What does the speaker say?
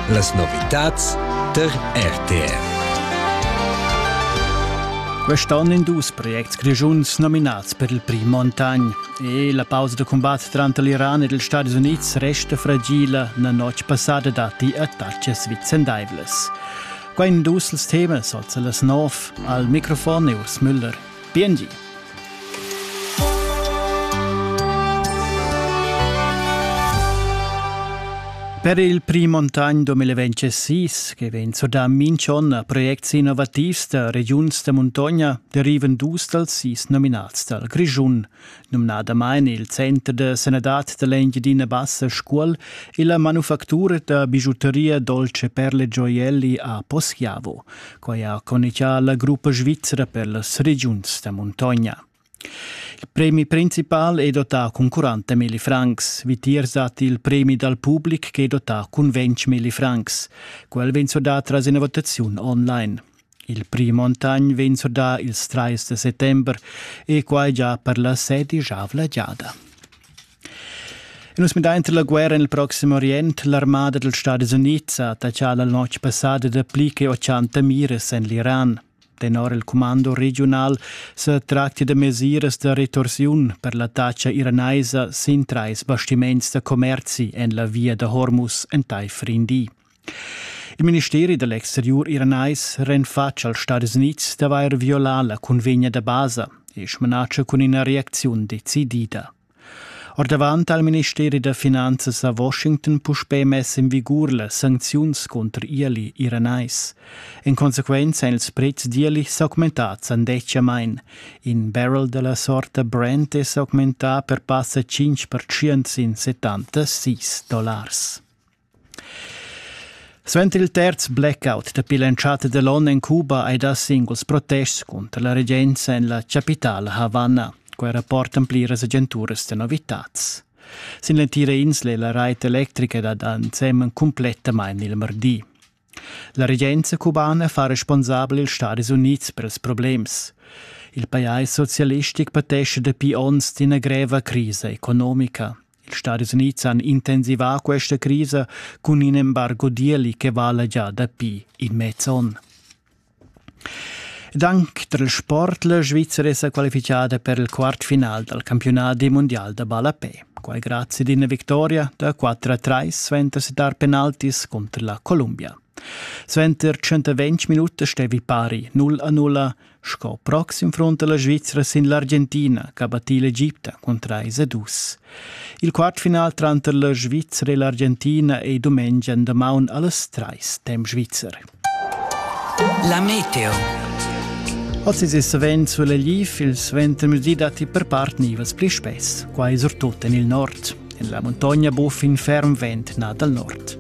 Las novitads tar RTR. Quest'anno in dus projects grischuns nominats per il prim Montagn. E la pausa da combat tranter l'Iran ed ils Stati Unids resta fragila. La notg passada datti attacchi svicendaivles. Qua in dus els temas, also las nov. Al microfon Urs Müller. Biengi. Per il prim ontan 2026, che vegn surdà minch'on a projects innovativs da regiuns da muntogna, derivan dus dals sis nominats dal Grischun. numnadamain il Center da sanadad da l'Engiadina Bassa Scuol e la manufactura da bigiuteria Dolce Perle Gioielli a Poschiavo. Quai ha conichà la gruppa svizra per las regiuns da muntogna. Il premi principal è dotà cun 40 milli francs. Vitiers dat il premi dal public che è dotà cun 20 milli francs. Quel vegn surdà tras ina votaziun online. Il prim montagn vegn surdà ils trais da settember e quai già per la sedisavla giada. E nus midain tra la guerra en il Proximo Orient. L'armada dels Stati Units ha attaccà la notg passada da pli che 80 mires en l'Iran. Tenor il comando regional se tracti de mesiras de retorsiun per l'attacca iranaisa sin trais bastiments de commerzi en la via de Hormuz entaifer Indi. Il ministeri da l'exteriur iranais ren fatg als Stadis Unids d'avair violà la cunvegna da basa e smanatscha cun ina reacziun decidida. Ordavant ha il ministeri da finanzas a Washington puspè mess en vigur las sancziuns contr ieli iranais. En consequenza èn ils prezs d'ieli s'augmentads andetgamain. In barrel da la sorta Brent è s'augmentà per passa 5% sin 76 dollars. Suenter il terz blackout dapi l'entschatta da l'onn en Cuba hai dà singuls protests cunter la regenza en la chapitala Havanna. Quai rapportan pliras agenturas da novitads. Sin l'entira insla è la rait electrica dad ensemen cumplettamain il mardi. La regenza cubana fa responsabel ils Stadis Unids per ils problems. Il pajais socialistic patescha dapi onns d'ina greva crisa economica. Ils Stadis Unids han intensivà questa crisa cun in embargo d'ieli che vala gia dapi in mez onn. Dank dal sport la Svizzera è sa qualifichada per il quartfinal dal campionat di mondial da ballapè. Quai grazie ad una vittoria da 4-3 sventa dar penaltis contro la Columbia. Sventer 120 minuti stevi pari 0-0 Sco proxim frunta la Svizra sin l'Argentina, ch'ha battì l'Egipta cun trais a dus. Il quartfinal tranter la Svizra e l'Argentina è dumengia en damaun allas trais, temp svizzer. La meteo. Ozi è savent sulla Lif, il suentermezdi datti per part nivels pli spess, quai surtut en il nord. En la montagna buffa in ferm vent nà dal nord.